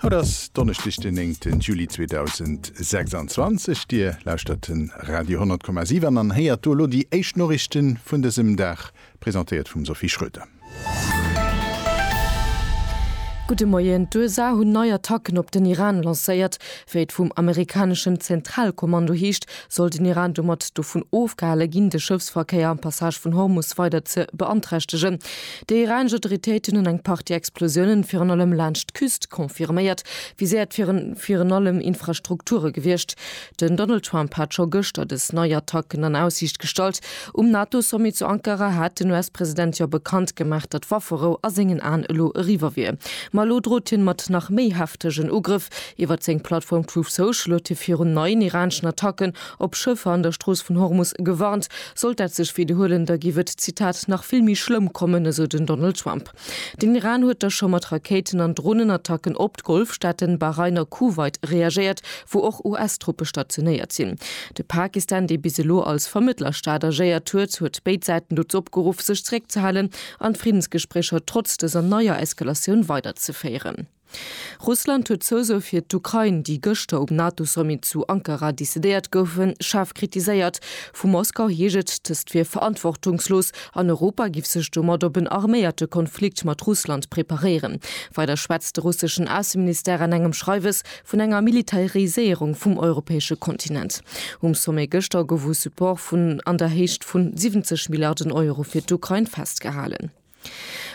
Haut ass Donneschdeg den 9 Juli 2026, Dir lauschtert den Radio 10,7 an héiert do elo déi éischt Noriichten vun dësem Dag, presentéiert vum Sophie Schröder. Gudde Moien, D'USA hunn nei Attacken op den Iran lancéiert. Wéi et vum amerikaneschen Zentralkommando heescht, soll den Iran domat dovun ofgehale ginn, de Schëffsverkéier am Passage vun Hormus weider ze beanträchtegen. Déi iranesch Autoritéiten hunn eng Partie Explosiounen virun allem laanscht d'Küst confirméiert. Viséiert wieren virun allem Infrastrukture gewiescht. Den Donald Trump hat scho gëschter dës nei Attacken an Aussiicht gestallt. Um NATO-Sommet zu Ankara hat den US-President jo bekannt gemaach, datt Wafferou a sengen Aen elo eriwwer wier. Ma elo drot hien mat nach méi heftegen Ugrëff. Iwwert seng Plattform Truth Social huet hie virun neien iraneschen Attacken Op Schëffer an der Strooss vun Hormus gewarnt, sollt dat sech widderhuelen, da giff et, Zitat, nach vill méi schlëmm kommen, esou den Donald Trump. Den Iran huet da scho mat Rakéiten an Dronenattacken op d'Golfstaaten Bahrain a Kuwait reagéiert, wou och US-Truppe stationéiert sinn. De Pakistan, dee bis elo als Vermëttlerstaat agéiert huet, huet béid Säiten dozou opgeruff, sech zeréckzehalen an d'Friddensgespréicher trotz dëser neier Eskalatioun weiderzeféieren. Russland huet d'Zousoe fir d'Ukrain, déi gëschter um NATO-Sommet zu Ankara decidéiert goufen, schaarf kritiséiert. Vu Moskau heescht et, dëst wier verantwortungslos an Europa giff sech domat op en arméierte Konflikt mat Russland preparéieren. Weider schwätzt de russeschen Ausseministère an engem Schreiwes vun enger Militariséierung vum europäesche Kontinent. Um Sommet gëschter gouf u Support vun an der Héicht vun 70 Milliarden Euro fir d'Ukrain festgehalen.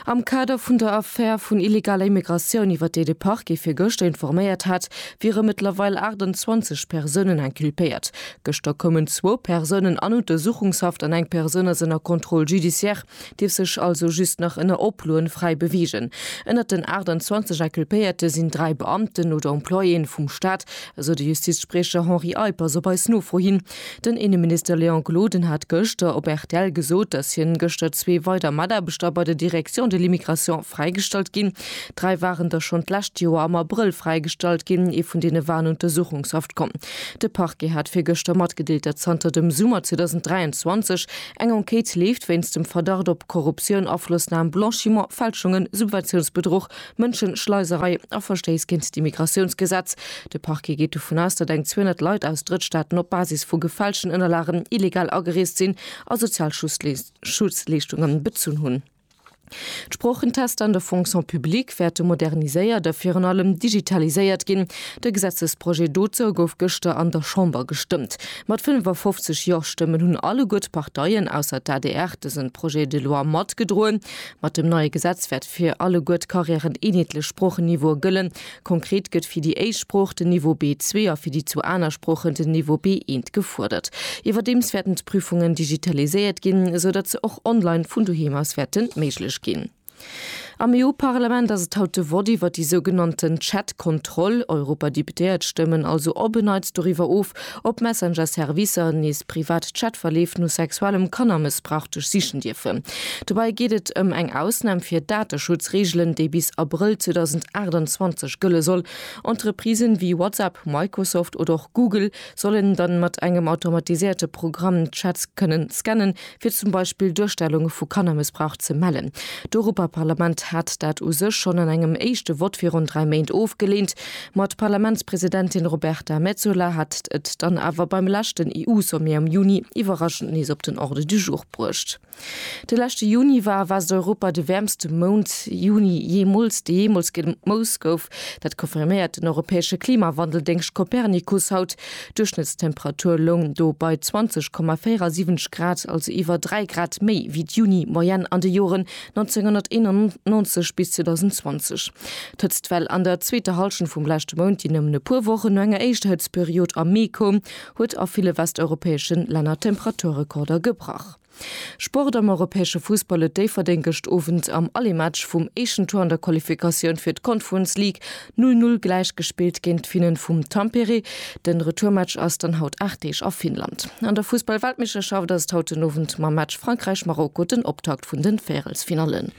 Am Kader vun der Affär vun illegaler Immigratioun, iwwer déi de Parquet fir gëschter informéiert hat, wiere mëttlerweil 28 Persounen inculpéiert. Gëschter koumen zwou Persounen an Untersuchungshaft an eng Persoun ass ënner Contrôle judiciaire, dierf sech also just nach ënner Oploen fräi beweegen. Ënnert den 28 Inculpéierte sinn dräi Beamten oder Employéen vum Staat, esou de Justizspriecher Henri Eippers op eis Nofro hin. Den Inneminister Léon Gloden hat gëschter op rtl gesot, datt hien gëschter zwee weider Mataarbechter bei der Direction de l'immigration fräigestallt ginn. Dräi waren der schonn d'lescht Joer am Abrëll fräigestallt ginn. Ee vun deene war an Untersuchungshaft komm. De Parquet hat virgëschter matgedeelt, datt zanter dem Summer 2023 eng Enquête leeft wéinst dem Verdacht op Korruptioun, Aflossnam, Blanchiment, Fälschungen, Subventiounsbedruch Mënschenschleiserei a Verstéiss géint d'Immigratiounsgesetz. De Parquet geet dovun aus, datt eng 200 Leit aus Drëttstaaten op Basis vu gefälschten Ënnerlagen illegal agereest sinn a sozial Schutzleeschtunge bezunn hunn. D'Sproochentester an der Fonction publique wäerte moderniséiert a virun allem digitaliséiert ginn. De Gesetzesprojet dozou gouf gëschter an der Chamber gestëmmt. Mat 55 Jo-Stëmmen hunn alleguer d'Parteien, ausser d'ADR, dëse Projet de loi matgedroen. Mat dem neie Gesetz wäert fir alleguer d'Carrière en eenheetlech Sproochen-Niveaue gëllen. Konkret gëtt fir déi éischt Sprooch den Niveau B2 a fir déi zwou aner Sproochen den Niveau B1 gefuerdert. Iwwerdeems wäerten d'Prüfungen digitaliséiert ginn, esou datt se och online vun doheem aus wäerte méiglech ginn. Am EU-Parlament ass et haut de Vott iwwert déi sougenannten Chat-Kontroll. Europadeputéiert stëmmen also op e Neits doriwwer of, Op Messenger-Servicer nees privat Chatverleef no sexuellem Kannermëssbrauch duerchsichen dierfen. Dobei geet et ëm eng Ausnahm fir Dateschutzregelen, déi bis Abrëll 2028 gëlle soll. Entreprisen wéi WhatsApp, Microsoft oder och Google sollen dann mat engem automatiséierte Programm d'Chats kënnen scannen, fir zum Beispill Duerstellunge vu Kannermëssbrauch ze mellen. D'Europaparlament hat dat u sech schonn an engem éischte Vott virun dräi Méint ofgeleent, ma d'Parlamentspresidentin Roberta Metsola hat et dann awer beim leschten EU-Sommet am Juni iwwerraschend nees op den Ordre du jour bruecht. De leschte Juni war a Westeuropa de wäermste Mount, Juni, jeemools, dee jeemools gemooss gouf. Dat confirméiert den europäesche Klimawandeldéngscht Copernicus haut. D'Duerchschnëttstemperatur loung do bei 20,47 Grad, also iwwer 3 Grad méi wéi d'Juni-Moyenne an de Joren 1991 bis 2020. D'Hëtztwell an der zweeter Hallschent vum leschte Mount, déi nëmmen e puer Wochen no enger éischter Hëtztperiod am Mee koum, huet a ville westeuropäesche Länner Temperaturrekorder gebrach. Sport am europäesche Fussball huet Déifferdeng gëscht Owend am Allemaatch vum éischten Tour an der Qualifikatioun fir d'Conference League 0, 0 gläich gespillt géint d'Finnen vum Tampere. De Retourmatch ass dann haut 8 Deeg a Finnland. An der Fussball-Weltmeeschterschaft ass et haut den Owend mam Match Frankräich-Marokko den Optakt vun den Véierelsfinallen.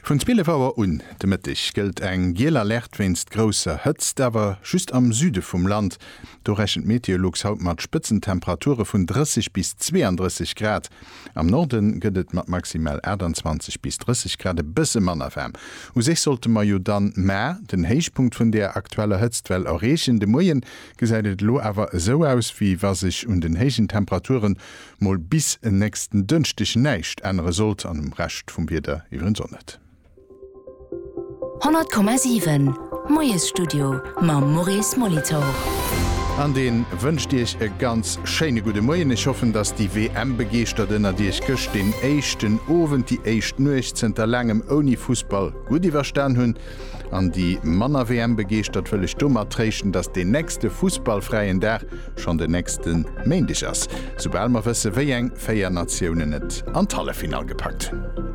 Vun 12 Auer un de Mëtteg gëllt eng giel Alerte wéinst grousser Hëtzt, awer just am Süde vum Land. Do rechent Meteolux haut mat Spëtzentemperature vun 30 bis 32 Grad. Am Norde gëtt et mat maximal 28 bis 30 Grad e bësse manner waarm. U sech sollte mer jo dann mar den Héichpunkt vun der aktueller Hëtztwell erreechen. De Moie gesäit et elo awer esou aus, wéi wa sech un den héijen Temperature mol bis en nächsten Dënschdeg näischt ännere sollt, an um Rescht vum Wieder iwwerens och net. 100,7 Moiesstudio mam Maurice Molitor. An deen wënscht Iech e ganz schéine gudde Moien. Ech hoffen, dass déi WM-Begeeschtert ënnert Iech gëscht deen éischten Owend, déi éischt Nuecht zënter laangem ouni Fussball gutt iwwerstan hunn. An déi manner WM-Begeeschtert wëll ech domat tréischten, dass deen nächste fussballfräien Dag schonn den nächste Méindeg ass, soubal mer wësse wéi eng 4 Natiounen et an d'Halleffinall gepackt hunn.